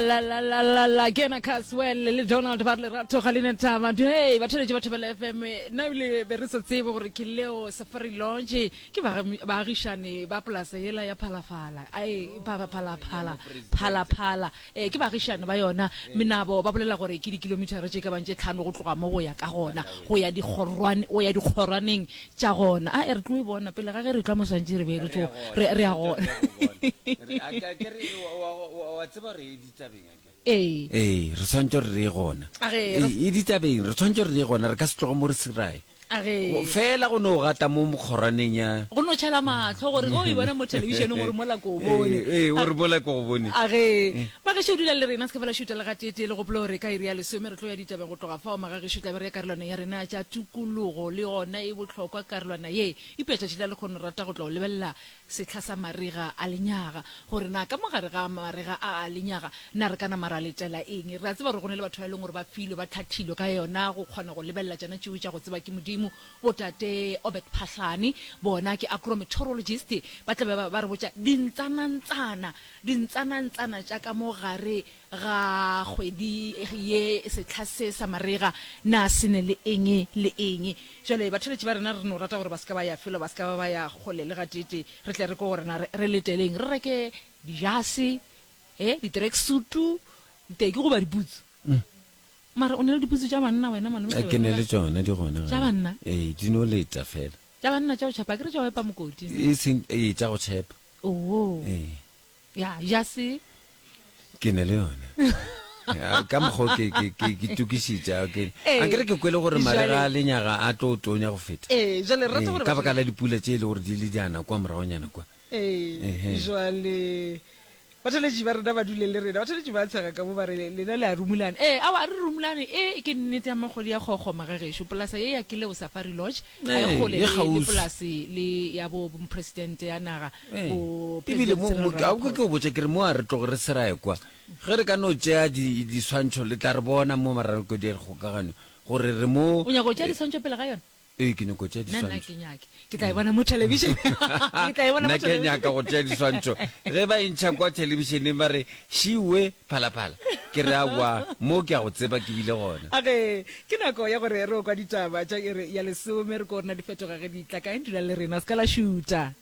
la la la la la ke yena caswell le donald ba re lerato ga le ne taba hey batheletše ba thobela fm nna ebile be re sa tsebe gore ke leo safari longe ke baagi- baagišane ba polasa yela ya phalafala ae phalaphala phalaphala um ke baagišane ba yona menabo ba bolela gore ke dikilomitara tše ka bang tše tlhano go tloga mo go ya ka gona go ya dikgorwane go ya dikgorwaneng Tša gona. A e re tlo e bona pele ga ge re tlwa moswantši re be re tso re re a gona. Re a ka ke re wa wa wa wa tseba re e ditabeng a ke. Ee. Ee, re tshwantse re re gona. A ge re. E ditabeng re tshwantse re re gona re ka se tloga mo re sirae. A ge. Fela go no gata mo mokgorwaneng ya. Go no tšhala mahlo gore o e bona mo televisioneng gore mola ko bone. Ee, ee, gore mola ko go bone. A ge. Ba gešo dula le rena se ke fela šuta le ga tete le gopolo gore ka iri ya lesome re tlo ya ditabeng. Go tloga fao, magagešo e tla be re ya karolwana ya rena ya tša tukulugo. Le yona e bohlokwa karolwana ye. Eupša tšatši la lekgono re rata go tlo lebelela sehla sa marega a lenyaga, gore na ka mo gare ga marega a a lenyaga na re ka nama ra letela eng. Re a tseba gore go na le batho ba e leng gore ba filwe, ba hlathilwe ka yona go kgona go lebelela tšona tšeo tša go tsebwa ke Modimo. Botate Obert Phahlane, bona ke agrometeorologist, ba tla be ba re botša dintsanantsana, dintsanantsana tša ka mo gare Ga kgwedi ye sehla se sa marega na se ne le eng le eng? Bjale, batheletši ba rena re no rata gore ba se ka ba ya felo, ba se ka ba ba ya kgole le gateetee. Re tle re kwe gore na re, re leteleng. Re reke dijase, he, di-tracksuit-u, diteki goba diputsu. Mara o ne le diputsu tša banna wena, Malome Thabela? Ke ne le tšona, di gona. Tša banna? Ee, di no leta feela. Tša banna tša go tšhepa, akere tša go epa mokoti? Eseng, ee, tša go tšhepa. Oo. Ee. Ya, ya se. Ke ne le yone. Ya, ka mokgwa ke ke ke ke tukišitša ke Ee. a ke re ke kwele gore Jwale- marega a lenyaga a tlo tonya go feta Ee, jwale re rata Ee, gore ka ba- baka la dipula tše e le gore di le diana kwa moragonyana kwa Ee, Ehe. jwale bathaletši ba rena ba dule le rena bathaletši ba tshega ka mo ba re lena le a rumulane ee ao a re rumulane e ke nnete ya magodi ya kgokgoma ga gešo polasa ye ya keleo safari lodge ga Ee, e kgole e le- le kgauswi. polase le ya bo mopresidente ya naga Ee, go ebile President mo Cyril mo- ka- Ramaphosa. ke o botse ke re mo a re tloge re serae kwa ge re ka no tšea di- diswantšho le tla re bona mo maraloko di kgokaganyo gore re mo o nyaka go tšea diswantšho pele ga yone ee ke nyako tšea nna nna diswantšho ke nyake ke tla e bona mo television ke tla e bona mo nna ke television nyaka go tšea diswantšho ge ba entšha kwa thelebišeneng ba re šiwe phalaphala ke re awa mo ke a go tseba ke bile gona okay Ke nako ya gore re o kwa ditaba tša iri ya lesome. Re ko rena di fetoga ge di tla kae? Dula le rena, se ka la šuta.